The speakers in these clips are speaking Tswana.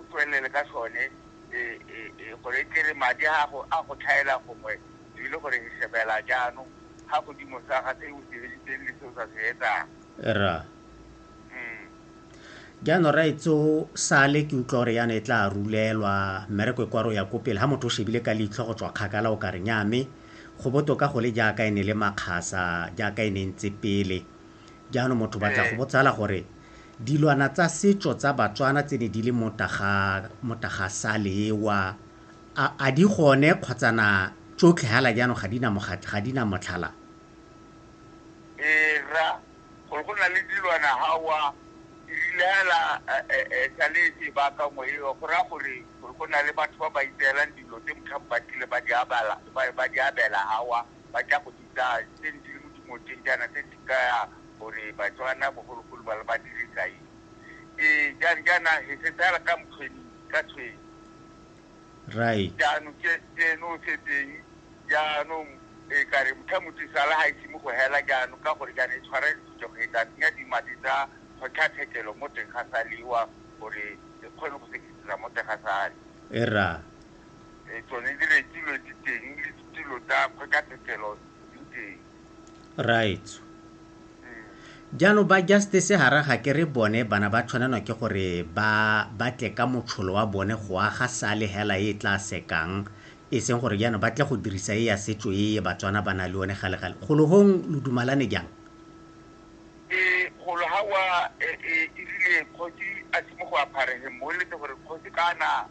o tswelele ka sone gore e tlere madi a gago a go tlhaela gongwe ebile gore e shebela jaanong ga godimo sa ga se o se editseng le se o sa se etsang ra mm. jaanong ra etso sale ke utlwa gore yana e tla rulelwa mmereko e kwa ro ya ko pele ga motho o shebile ka leitlho go tswa kgakala o ka re nyame go botoka go le jaaka e ne le makgasa jaaka e ne ntse pele Jaanong motho ba tla go botsala gore dilwana tsa setso tsa Batswana tse ne di le mo Tagasalewa a di gone kgotsa na tsotlhe hala jaanong ga di na mogatlha, ga di na motlhala? Ee, rra, gore go na le dilwana hawa di rile hela sa le sebaka mo eo, go raya gore go na le batho ba ba itseelang dilo tse motlhang ba tlile ba di abela hawa ba tla go bitsa tse ne di le mo dimoteng jaana tse di kaya gore Batswana bogologolo ba le ba dirisa eng. Ee, jang jaana he se tsala ka mokgweni ka tshweng. Right. Jaanong ke ke no setseng jaanong e ka re motho motho sala ga ise mo go hela jaanong ka gore jaana e tshwara ditso go etsa tsenya dimadi tsa kgotlatshekelo mo teng ga saliwa gore e kgone go sekisisa mo teng ga sale. Era. e tsone di rekilwe di teng le ditilo tsa kgotlatshekelo di teng right mm. jaanong ba justice ga raga ke re bone bana ba tshwanelwa ke gore ba batle ka motsholo wa bone go aga sale hela e tla sekang e seng gore jaanong ba tle go dirisa e ya setso e e batswana ba na le one galegale golohong lo dumalane jang ee golo ga wa e, e, e rile kgosi a simo go apharegeng mo letse gore kgosi kana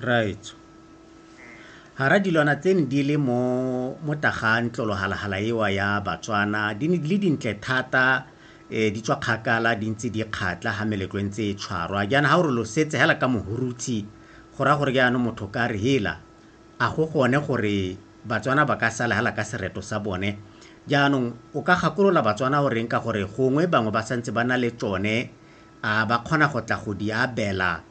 Raetsho. Hara dilwana tse ne di le mo mo tagang tlolohalhala ewa ya Batswana di ne di le dintle thata eh di tswa kgakala di ntse di kgatla ha meletlo e ntse e tshwarwa jaana ha o re lo setse hela ka mohurutshe go raya gore jaanong motho ka re hela a go gone gore Batswana ba ka sala hela ka sereto sa bone jaanong o ka gakolola Batswana o reng ka gore gongwe bangwe ba santse ba na le tsone a ba kgona go tla go di abela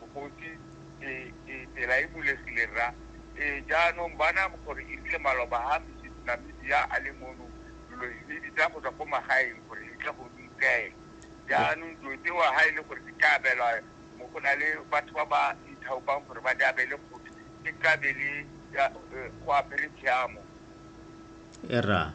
Mokgotsi, Ee, ee, tsela e bulegile, rra. Ee, jaanong, bona gore e rile maloba a Mesisinamibia a le mono, dilo di di tsaya go tswa ko magaeng gore di tle go di tseye. Jaanong, dilo tseo ha e le gore di ka abelwa, mo go na le batho ba ba ithaopang gore ba di abele kgotsi, e tla be le go apere tshiamo. Ee, rra.